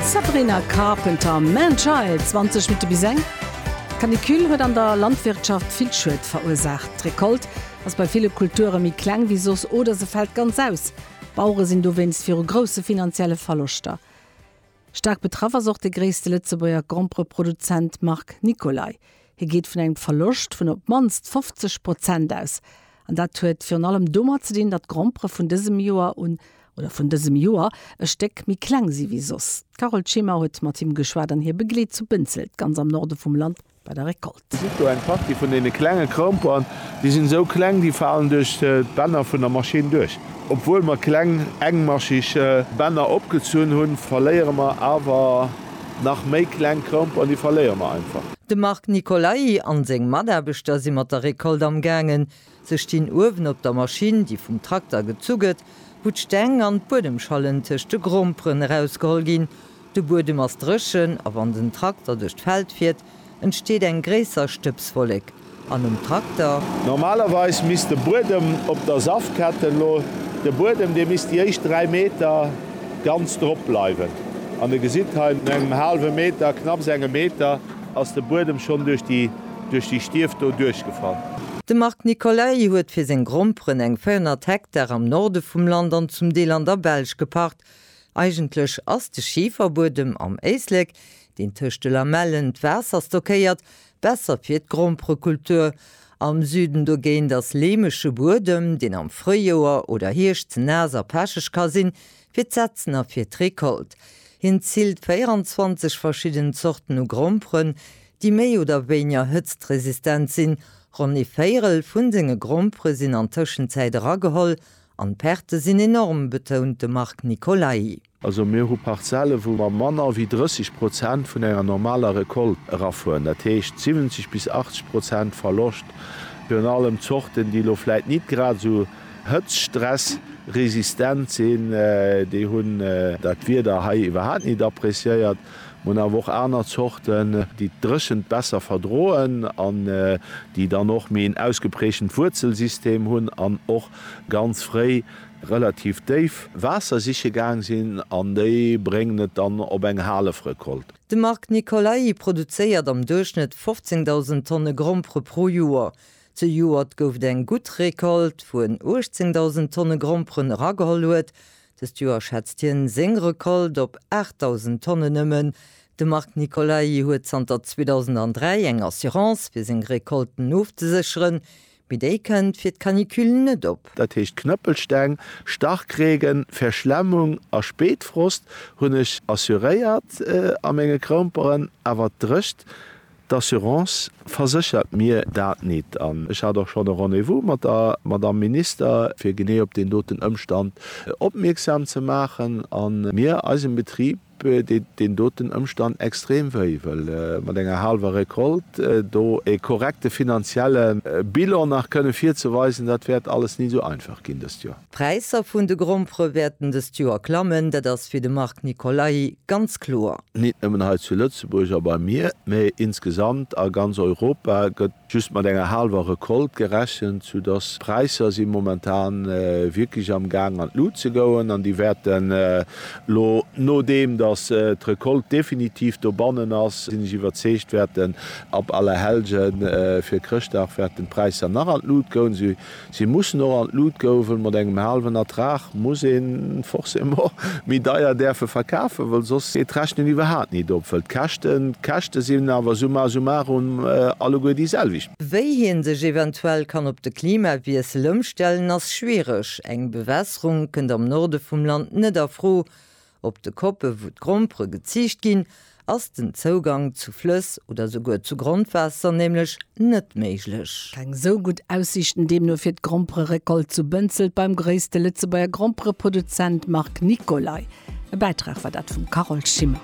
Sabrina Carpenter, Man Child, 20 Minutte bis eng. D'Canicule huet an der Landwirtschaft vill Schued verursaacht. D'Recolte ass bei ville Kulture méi kleng wéi soss oder se fält ganz aus. D'Bauere sinn dowéinst viru grousse finanzielle Verloschter. Staark betraff ass och de gréisste Lëtzebuerger Grompereproduzent Marc Nicolay. Hie geet vun engem Verloscht vun op d'mannst 50 Prozent aus. An dat huet virun allem domat ze dinn, datt d'Grompere vun dësem Joer un, oder vun dësem Joer, e Stéck méi kleng si wéi soss. D'Carole Schimmer huet mat him geschwat an hie begleet zu Bënzelt, ganz am Norde vum Land, bei der Recolte. Zitt do eng Partie vun deene klenge Gromperen. Déi sinn esou kleng, déi falen duerch d'Bänner vun der Maschinn duerch. Obwuel mer kleng, engmascheg Bänner opgezunn hunn, verléiere mer awer Nach méi kleng Kromp an déi verléiere mer einfach. De Marc Nicolai an seng Mataarbechter si mat der Récolte am gaangen. Se stinn uewen op der Maschinn, déi vum Trakter gezu gëtt, wou d'Steng an d'Buedemschallen tëscht de Gromperen erausgeholl ginn. De Buedem ass dréchen a wann den Trakter duerch d'Feld fiert, entsteet eng gréisser Stëbswollek an um Trakter. Normalerweis misst de Buedem op der Saftketten lo, de Buedem dee misst déi éischt 3 Meter ganz drop bleiwen an de gesitt hei no engem haalwe Meter, knapps engem Meter ass de Buedem schonn duerch déi duerch déi Stief do duerchgefall. De Marc Nicolay huet fir seng Gromperen eng 400 Hektar am Norde vum Land an zum Deel an der Belsch gepacht. Eigentlech ass de Schiferbuedem am Éislek deen tëscht de Lamellen d'Waasser stockéiert, besser fir d'Gromperekultur. Am Süden dogéint ass leemege Buedem, deen am Fréijoer oder Hierscht ze naass a pecheg ka sinn, fir d'Setzen a fir d'Recolte. Hien ziilt 24 verschidden Zorten u Gromperen, déi méi oder wéinger hëtztresistent sinn. Ronn ee Véierel vu senge Grompere sinn an Tëschenzäit erageholl an d'Perte sinn enorm, betount de Marc Nicolai. Also mir hu Parzelle wou mer manner wéi 30 Prozent vun enger normaler Recolte erafueren, dat heescht 70 bis 80 Prozent Verloscht, virun allem Zorten déi elo vläit nit grad esou hëtztstressresistent sinn, déi hunn dat Wieder hei iwwerhaapt nit appreciéiert. Mer hunn awer och aner Zorten déi d'Dréchent besser verdroen an déi dann och méi en ausgeprägtent Wuerzelsystem hunn an och ganz fréi relativ déif Waasser siche gaang sinn an déi bréngen et dann op eng Halefrecolte. De Marc Nicolai produzéiert am Duerchschnëtt 15.000 Tonne Grompere pro Joer. Zejoert gouf et eng gutt Recolte, wou en 18.000 Tonne Gromperen erageholl huet. Dëst Joer schätzt hien seng Recolte op 8.000 Tonnen nëmmen. De Marc Nicolai huet zanter 2003 eng Assurance, fir seng Recolten ofzesécheren. mee déi kënnt fir d'Canicule net op. Dat heescht Knëppelsteng, Starkregen, Verschlemmung a Spéitfrost hunn ech assuréiert a menge Kroumperen, awer d'Drëcht d'Assurance verséchert mir dat nit. An ech hat och schonn e Rendez-vous mat der Madamm Minister, fir genee op deen doten Ëmstand opmierksam ze maachen a mir eisem Betrib, deet deen doten Ëmstand extrem wéi, well mat enger haalwer Recolte do ee korrekte finanzielle Bilan nach kënne virzeweisen, dat wäert alles ni esou einfach ginn dëst Joer. D'Präisser vun de Grompfere wäerten dëst Joer klammen, dat ass fir de Marc Nicolai ganz kloer. Nit nëmmen hei zu Lëtzebuerg a bei mir, mee insgesamt a ganz Europa gëtt Just mat enger haalwer Recolte gerechent, sou dass d'Präisser si momentan wierklech am Gaang an d'Lut ze goen an déi wäerten elo, nodeem dass d'Recolte definitiv dobannen ass, sinn ech iwwerzeegt, wäerten ab Allerhellgen fir Chrëschtdag wäerten d'Präisser nach an d'Lut goen. Si mussen och an d'Lut gouwen, mat engem haalwen Ertrag muss een forcément méi deier däerfe verkafen, well soss geet d'Rechnen iwwerhaat nit op, well d'Käschten, d'Käschte sinn awer summa summarum alleguer déi selwecht. Wéi hien sech eventuell kann op de Klimawiessel ëmstellen ass schwiereg, eng Bewässerung kënnt am Norde vum Land net a Fro, Op de Koppe wou d'Grompere geziicht ginn, ass den Zougang zu Flëss oder souguer zu Grondwaasser nämlech net méiglech. Keng sou gutt Aussiichten deemno fir d'Grompere-Recolte zu Bënzelt beim gréisste Lëtzebuerger Grompereproduzent Marc Nicolay. E Bäitrag war dat vum Carole Schimmer.